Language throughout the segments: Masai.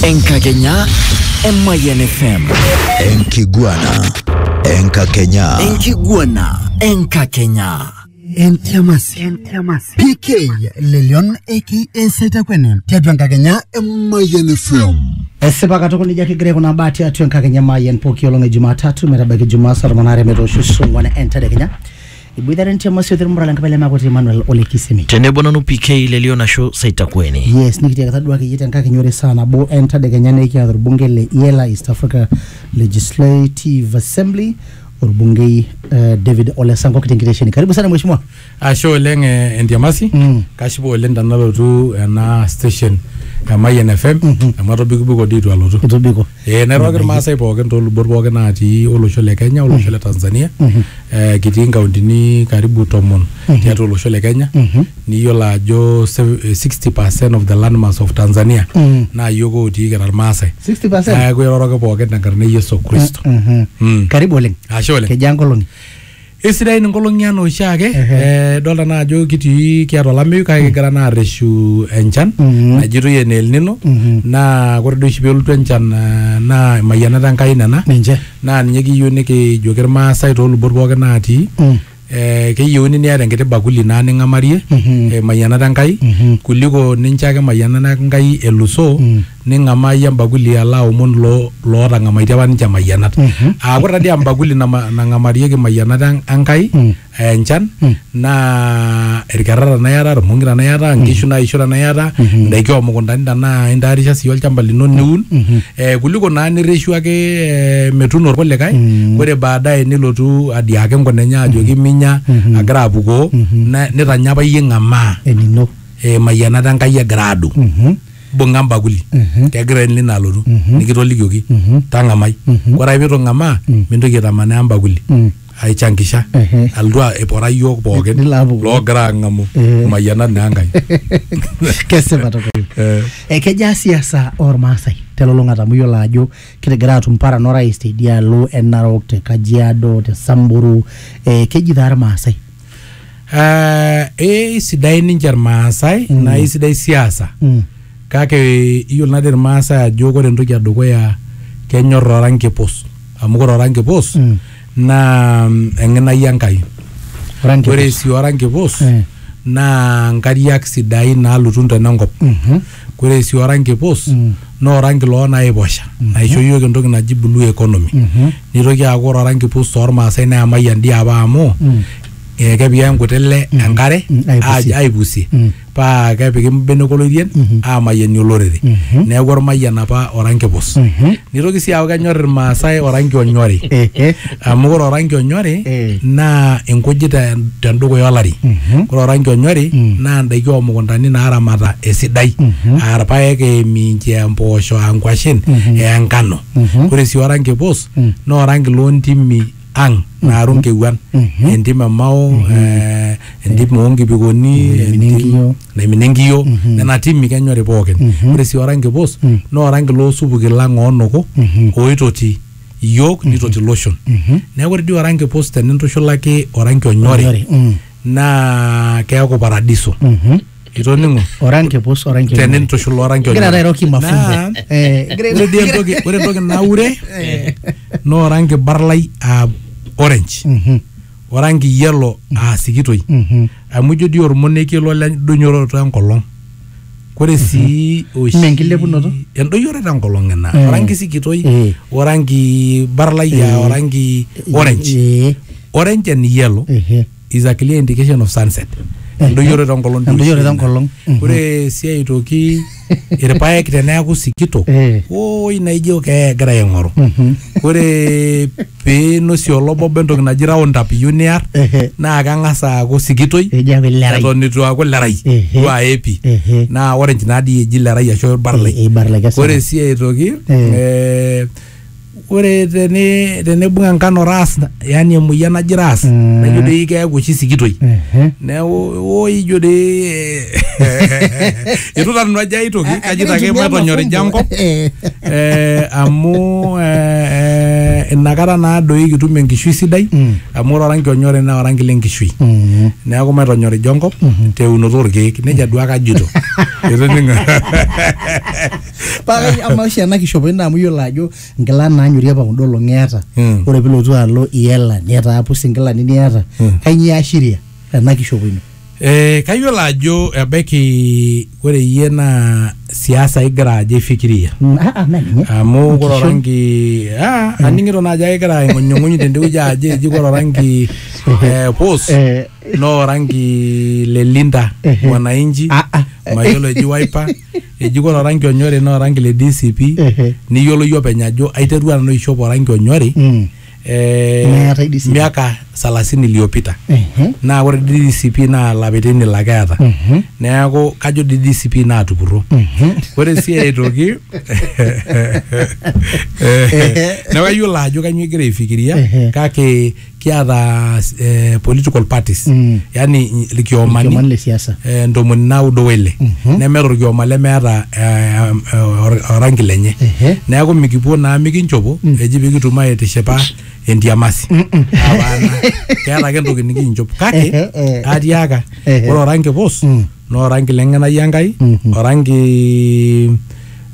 Enkakenya Emayian FM. Enkiguana. Enkakenya. Enkiguana Enkakenya. Entiamasi. Entiamasi. PK Lelion aka Saitakwene. Tiatua Enkakenya Emayian FM. Esipa katukul ijo kigira aikunaa baa tiatua Enkakenya Emayian pooki olong e Jumatatu metabaiki Jumaa saa tomon aare metoosho sung'uan entedekenya. Iboitare nche Mose otii Murala Nkibale Makoti Emmanuel ole Kisemi. Tenebo nanu PK le Lion ashu Saitakueni. Yes, nikitiakita duake iyie tenkakenya ore saa nabo entadekenya naa ekiata orbungei le Iela East Africa Legislative Assembly orbungei eh, David Ole Sankok tenkitesheni. Karibu sana mheshimiwa. Ashe oleng eh, Entiamasi Mm. kashipa oleng tenalotu ena station e Mayian FM amu atobikibiko dii itu alotu Itobiko. Eh, nairriwaki irmaasai pookin toolubot pookin natii olosho le Kenya olosho le Tanzania eh, kitii inkauntini karibu tomon tiatua olosho le Kenya niyiolo ajo sev- eh, 60% of the landmass of Tanzania naa yiok otii kira irmaasai 60%? neeku iroroki pookin tenkarna e Yesu Kristo Mhm. Mm. karibu oleng Ashe oleng. kejaa nkolong'i Eisidain inkolong'i anaa oshiake eh, idolta naa ajo kitii kiata olameyu kake kigira naa arreshu enchan najitoi ene El Nino naa ore doi oshi pelotu enchan eh, naa imayianat Enkai nena Ninche. naa ninye kiyieu nikijoki irmaasai toolubot pookin naatii eh, keyieuni niata enkiti bakuli naa ning'amarie eh, imayianat Enkai kuliko nincho ake imayianat Enkai elusoo ning'amaa iyie embakuli alo aomon loo lootang'amaitie apa ninche imayianat aa ore taadii embakuli nama- nang'amarieki imayianat en- Enkai aa enchan naa irkerra tenaa iyata irmong'i tenaa iyata inkishu naisho tenaa iyata indaiki oomukuntani tenaa intaarisha sii olchamba lino niun eh, kuliko naa nirreshu ake eh, metuuno irkulikae ore baadaye nilotu adiaki enkuna enye ajoki minya agira apukoo na- nitanya apa iyie ing'amaa enino eh, imayianat Enkai egira adung' bunga embakuli mhm. kegira enlina alotu mhm. nikitolikioki mhm. tang'amai ore ake pitu ng'amaa mintoki aitamanaa embakuli aichankisha alotu ipora yiok pookin loogira ang'amu imayianat naa Enkai. Kesipa tukul. Eh. Eh, kejaa siasa ormaasai telulung'ata amu iyiolo ajo kitigira atum paran orais teidialo e Narok te Kajiado te Samburu eh, keji taa irmaasai Eh, eisidai ninche irmaasai mm. naa eisidai siasa mm. kake iyiolo nadi irmaasai ajo ore entoki edukuya kenyor oranki pus amu ore oranki pus mm. naa mm, eng'inai enkai ore sii oranki pus eh. naa nkariak sidain naalutu ntenenkop mm -hmm. Ore sii oranki pus naa oranki loo naiposha naisho iyiook entoki naji blue economy. Nitoki aaku ore oranki pus tormaasai naa emayian dii apa amu ee kepiki ake nkuti ile enkare aaj- aipusie paa kepiki mbenek oloirien aamayianie olorere. Neeku ormayian apa oranki pus. Nitoki sii aaku kenyor Irmaasai oranki onyori amu ore oranki onyori Eh. naa inkujit te- tendukuya olari. Ore oranki onyori naa indaiki oomukuntani naaramata esidai aa irpaek, aa eminchi, aa mpoosho, aa nkwashen, aa enkano. Ore sii oranki pus naa oranki loo ntimi ang naaru nkewuan entim e mao eh, entim oonkipikoni Naimina entim- enkiyo. naimina enkiyo nena timi kenyori pookin ore sii oranki pus naa oranki loosupuki lang oonoko oitoti iyiook nitoti loshon neeku ore dii oranki pus tenintushulaki oranki onyori Onyori, mm. naa keeku paradiso Mhm. itoning'o oranki pus oranki onyori. tenintushul oranki Igira onyori. airoroki Naa, mafumbo. Eh, igira- ore dii entoki ore entoki naure naa oranki barlai aa orange Mhm, oranki yellow aa sikitoi mhm. amu ijo dii ormonekie lo lendoyoroto enkolong kore sii oshi Mme enkilepunoto? endoyoroto enkolong ina Eh. oranki sikitoi Eh. oranki barlai aa Eh. oranki orange Eh, orange and yellow ehe. is a clear indication of sunset endoyioroto enkolong doi Endoyioroto oshi ina. enkolong. Mhm. ore si aitoki irpaek teneaku sikito Eh. oi naijo kee egira aing'oru Mhm. ore pinosie olobobo entoki naji round up iyieu niar Ehe. naa keng'as aaku sikitoi Ejo aaku ilerai. eton itu aaku lerai Ehe. duo aepi Ehe. naa orange naadii eji lerai ashu barlai Eh, eh, barlai, kesipa. ore si aitoki Eh. eh, ore teni tenibung enkano ras yani emoyian naji ras Mm. naijo dei keeku oshi sikitoi Ehe. neeku oo ijo dei itu nanu ajo ai toki kajito ake Egira aitumia matonyorija mafumbo. enkop Eh. eh, amu eh, eh, inakata naa doi kitum enkishui sidai Mm. amu ore oranki onyori naa oranki lenkishui Mm. neeku maitonyorija enkop teunoto orkeek nejia duake ajito Itoning'o? paa kai- amaa oshi ena kishopoi naa amu iyiolo ajo nkila naanyori apa kunda olong'i eeta Mm. ore pilotu alo iela niata apus inkilani niata kainyioo iashiria ena kishopo ino Eh, kayiolo ajo ebaiki ore iyie naa siasa igira ajo ifikiria Mm, ah, ah, naa ninye amu ore Enkishon. orangi ah, aning'ito naajo ake egira aing'unyung'uny tendewueji ajo eji ore orangi eh, pus Eh, naa orangi le linda Ehe. mwananchi Ah, ah. mayiolo eji waipa ejiko toranki onyori naa oranki le DCP Ehe. niyioloyu openy ajo aiterua nanu aishop oranki onyori Mm. eh, Meetae DCP. miaka salasini iliyopita Ehe. naa ore DCP naa lapaitin ile ake eeta Mhm. neeku kajo dii DCP naatupurro Mhm. ore sii aitoki neeku ayiolo ajo kanyioo igira aifikiria Ehe. kake kiata eh, political parties Mm. yani Ilkiomani ilkiomani le siasa. eh, ntomoni naudo wele Mhm. nemeeta orkioma lemeeta eh, em, eh, or- orangi lenye Ehe. neeku mikipuo naa mikinchopo eji pikitum aitishipa entiamasi Apaana. keeta ake entoki nikinchop kake Ehe, eh. atiaka Ehe. ore orangi pus Mm. naa orangi lengenai enkai Mhm. orangi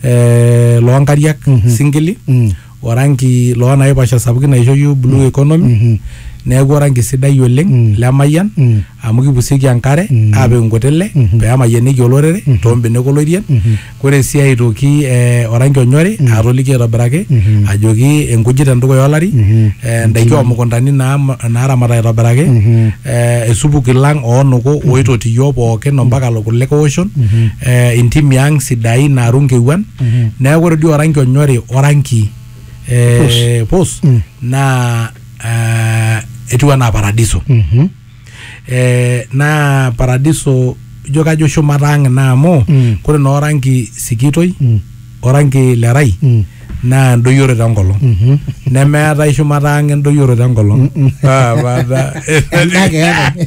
eh, loonkariak singili Mm. orangi loo naiposha sapukin naisho iyiook blue economy neeku orangi sidai oleng lemayian amu kipusieki enkare aapik inkutile pee emayianieki olorere too mbenek olorien ore sii aitoki eh orangi onyori atoliki aitobiraki ajoki inkujit endukuya olari eh indaiki omukuntani naam naaramata aitobiraki eh isupuki lang oonuku oitoti iyiook pookin ompaka kulikae oshon eh intimi ang sidain naaru inkewuan. Mhm. neeku ore dii oranki onyori oranki eh, pus Mm. naa eh, etiu anaa paradiso Mhm. eh, naa paradiso ijo kajo shumata ang ina amu Mm. kore naa oranki sikitoi Mm. oranki lerai Mm. naa endoyioroto enkolong Mhm. nemeetae shumata ang endoyioroto enkolong Ah, bada. Endaa keetae.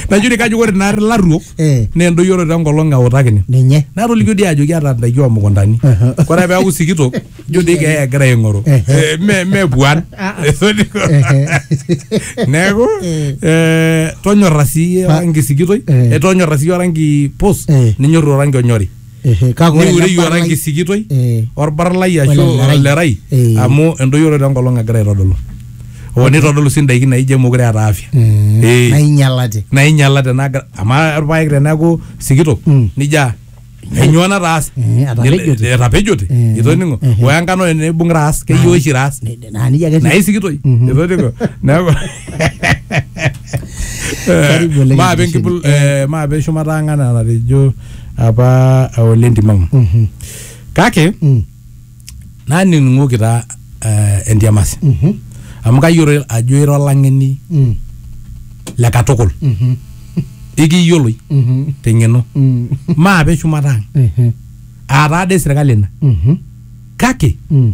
najuri kajo ore naari laruok Eh. naa endoyioroto enkolong eutakini ninye natolikio dii ajo kiata ndaiki omukuntani Aha. kore peaku sikitok ijo dii keeya egira aing'oru Ehe. Eh, me- me puan neeku Eh. eh, tonyorra sii Pa- orangi sikitoi Eh. eh, tonyorra sii orangi pus Eh. ninyorru orangi onyori Ehe, kake ore niure ele iora barlai- enkisikitoi Eh. orbarlai ashu Olemerai. olerai Eh. amu endoyioroto enkolong egira aitodolu o nitodolu sii ndaiki naijo emokure eeta afya Mm, Eh. nainyalate nainyala tenagira amaa irpaek teneeku sikitok Mm. nija enyoo nataase Eh, atapejote. Nil- etapejote Eh. itoning'o Eh. oya enkano enibung raas keyieu oshi raas Ne- ne- naa nijia ake etiu. naisikitoi Mhm. itoning'o neeku Karibu oleng maape enkisheni. enkipul eh, maape shumata ang' anaa enatejo apa ole Ntimau Mhm. kake Mm. nanining'oki taa eh, entiamasi Mhm. amu kayiolo ajo ira olang'eni Mm. le katukul Mhm. ikiyioloi Mhm. teng'eno Mm. maape shumata ang Mhm. aataa dei sirkali ina Mhm. kake Mm.